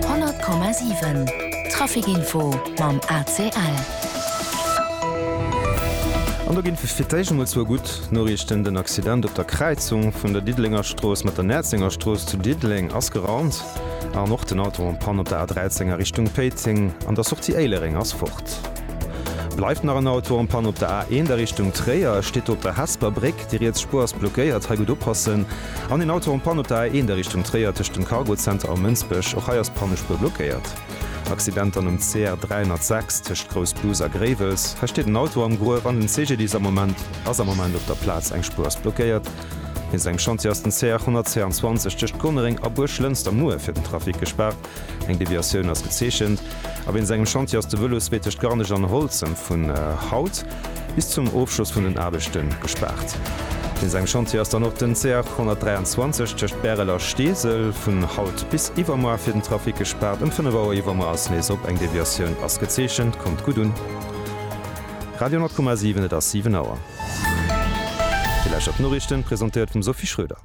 100,7 Trafic-Info mam ACL. An do ginn et fir d'éischt emol zwou gutt Noriichten, Den Accident op der Kräizung vun der Diddelenger-Strooss mat der Näerzenger-Strooss zu Diddeleng ass geraumt an och den Auto en panne op der A13 a Richtung Péiteng an der Sortie Éilereng ass fort. Bleift nach en Auto en panne op der A1 a Richtung Tréier, e steet do op der Hesper Bréck. Déi riets Spuer ass blockéiert, hei gutt oppassen. An een Auto en panne op der A1 a Richtung Tréier tëscht dem Cargo Center a Mënsbech. Och hei ass d'Pannespuer blockéiert. Accident dann um CR 306 tëscht Grouss Bus a Gréiwels. Hei steet en Auto am Gruef an den CGDIS ass am Moment ass am Moment op der Plaz. Eng Spuer ass blockéiert. Wéinst engem Chantier ass den CR 122 tëscht Gonnereng a Buerglënster muer fir den Trafic gespaart. Eng Deviatioun ass gezeechent a wéinst engem Chantier ass de Vëlosweeteg Garnech an Holzem vun haut bis zum Ofschloss vun den Aarbechte gespaart. Wéinst engem Chantier ass dann och den CR 123 tëscht Bärel a Steesel vun haut bis iwwermoar fir den Trafic gespaart. Ëm 5 Auer iwwermoar ass nees op, eng Deviatioun ass gezeechent. Kommt gutt un! Radio 10,7 Et ass 7 Auer. Déi lescht Noriichten, presentéiert vum Sophie Schröder.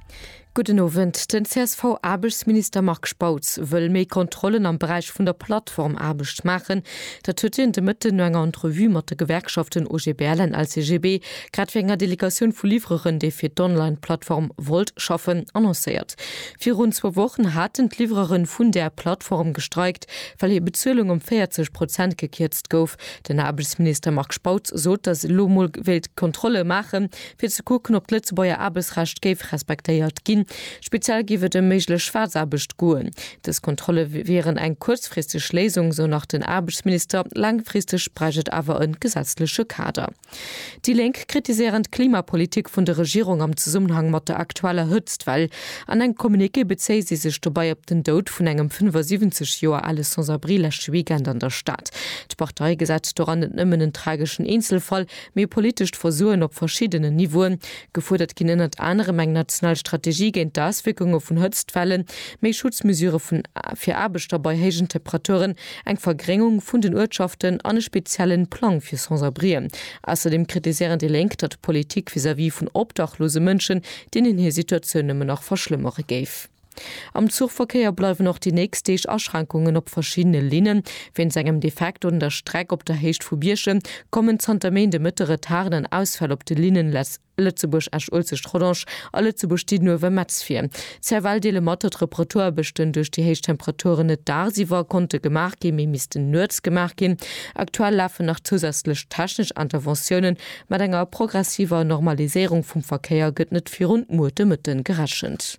Gudden Owend. Den CSV-Aarbechtsminister Marc Spautz wëll méi Kontrollen am Beräich vun der Plattformaarbecht maachen. Dat huet hien de Mëtten no enger Entrevue mat de Gewerkschaften OGBL an LCGB, grad wéi enger Delegatioun vu Livreren, déi fir d'Online-Plattform Wolt schaffen, annoncéiert. Virun zwou Wochen haten d'Livrere vun där Plattform gestreikt, well hir Bezuelung ëm 40 Prozent gekierzt gouf. Den Aarbechtsminister Marc Spautz sot, datt ee lo mol wéilt Kontrolle maachen, fir ze kucken, ob d'Lëtzebuerger Aarbechtsrecht géif respektéiert ginn. Speziell géif et ëm méiglech Schwaarzaarbecht goen. Dës Kontrolle wieren eng kuerzfristeg Léisung, sou nach den Aarbechtsminister. Laangfristeg bräicht et awer e gesetzleche Kader. Déi Lénk kritiséieren d'Klimapolitik vun der Regierung am Zesummenhang mat der aktueller Hëtztwell. An engem Communiqué bezéie si sech dobäi op den Doud vun engem 75 Joer ale Sans-abri leschte Weekend an der Stad. D'Partei gesäit doran net nëmmen en trageschen Eenzelfall, Mee politescht Versoen op verschiddenen Niveauen. Gefuerdert ginn ënnert anerem eng national Strategie géint d'Auswierkunge vun Hëtztwellen, méi Schutzmesure vun fir Aarbechter bei héijen Temperaturen, eng Vergréngung vun den Uertschaften an e speziellen Plang fir Sans-abrien. Ausserdeem kritiséieren déi Lénk, datt d'Politik vis-à-vis vun obdachlose Mënschen, deenen hir Situatioun nëmmen nach verschlëmmere géif. Am Zuchverkéier bleiwen och déi nächst Deeg Aschränkungen op verschiddene Linnen. Wéinst engem Defekt un der Streck op der Héicht vu Bierchem kommen zanter Méint de Mëtte Retarden an Ausfäll op de Linnen Lëtzebuerg-Esch-Uelzecht-Rodange a Lëtzebuerg-Diddenuewen-Metz vir. CFL deele mat, datt Reparatuarbechten duerch déi héich Temperaturen net dagsiwwer konnte gemaach ginn, mee missten nuets gemaach ginn. Aktuell lafen nach zousätzlech technesch Interventiounen. Mat enger progressiver Normaliséierung vum Verkéier gëtt net virun muer de Mëtte gerechent.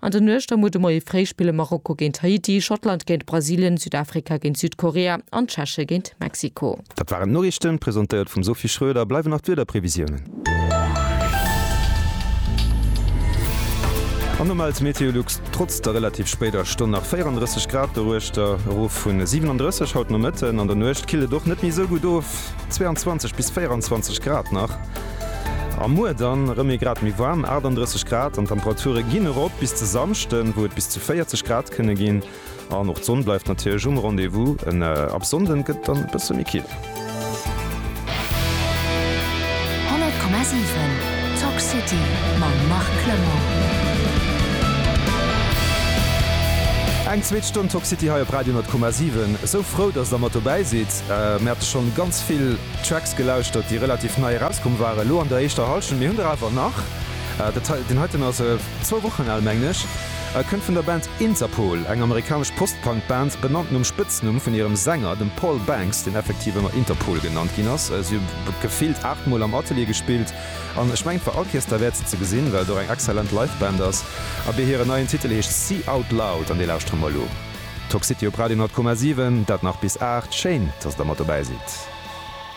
An der Nuecht am Ude Moie fréi spille Marokko géint Haiti, Schottland géint Brasilien, Südafrika géint Südkorea an d'Tscheche géint Mexiko. Dat waren d'Noriichten, presentéiert vum Sophie Schroeder. Bleiwen nach d'Wiederprevisiounen. An do mellt Meteolux trotz der relativ spéider Stonn nach 34 Grad doruechter, erof vun 37 haut Nomëtten. An der Nuecht killt et och net méi esou gutt of. 22 bis 24 Grad nach a muer dann erëm ee Grad méi waarm, 38 Grad, an d'Temperature ginn erop bis de Samschden, wou et bis zu 40 Grad kënne ginn. An och d'Sonn bleift natierlech um Rendez-vous. Ab Sonnde gëtt et dann e bësse méi kill. Eng zweet Stonn Talk City hei op Radio 10,7. Esou frou, dass Der mat dobäi sidd. Mir hate schonn ganz vill Tracks gelauschtert, déi relativ nei erauskomm waren elo an der éischter Hallschent. Mir hunn der awer nach. Deen heiten ass zwou Wochen al, mengen ech. E kënnt vun der Band Interpol, eng amerikanesch Post-Punk-Band, benannt nom Spëtznumm vun hirem Sänger, dem Paul Banks, deen effektiv ëmmer Interpol genannt ginn ass. Si hu gefillt aacht Mol am Atelier gespillt an ech mengen et war all Keess derwäert se ze gesinn, well et och eng exzellent Live-Band ass. Abee hiren neien Titel heescht Sea Out Loud an dee lauschtere mer elo. Toxity op Radio 100,7, dat nach bis 8, schéin dass der mat dobäi sidd.